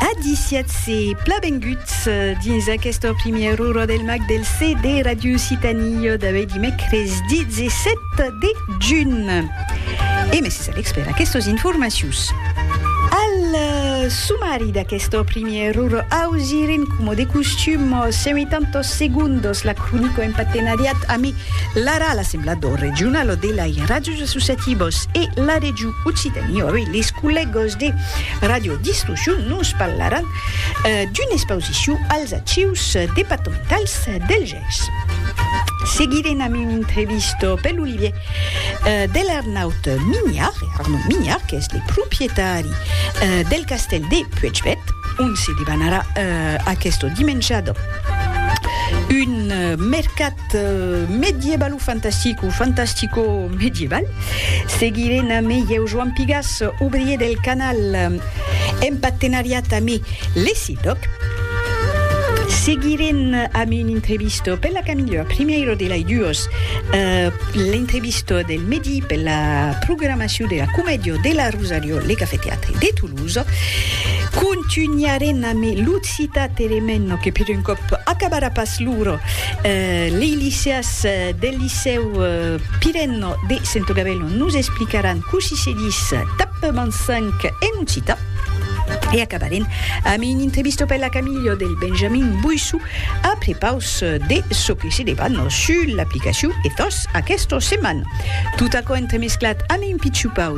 Adisiatz-se plan benguts dins aquesta primièra ora del mag del CD Radio Occitanie d'aué dimècres 17 de junh. E mèsi Alex per aquestas informacions. Al sumari d'aquesta primièra ora ausirem coma de costum 180 segondas la cronica en partenariat amé l'ARA, l'Assemblat d'Or Regional de l'Airaj, associativos e la Region Occitanie, avei les collègos de Radio Distorsion nos parlaràn d'una expausicion als Archius departamentals del Gèrs. Seguirem amb un entrevista pel Olivier de l'Arnaut Mignard, Arnaud Mignard, qu'es le proprietari del castèl de Puechbèth, ont se debanarà aquesta dimenjada un mercat medieval o fantastic o fantastico medieval seguiré na me ieu Joan Pigas ouvrier del canal en partenariat a me l'esidoc seguiré a me un entrevisto per la camilha primeiro de l'ai duos l'entrevisto del medi per la programacion de la comedio de la rosario le cafeteatre de Toulouse continuaré na me l'outro Citat elements que per un còp acabarà pas lor lei liceas del licèu pirenno de Sentogabello nos explicaràn cossí se dis tap mansanc en occitan e acabarem amb un entrevisto per la Camillo del Benjamin Boissou a prepaus de çò que se deban sus l'aplicacion Ethos aquesta setmana. Tot aquò entremesclat amb un pichupau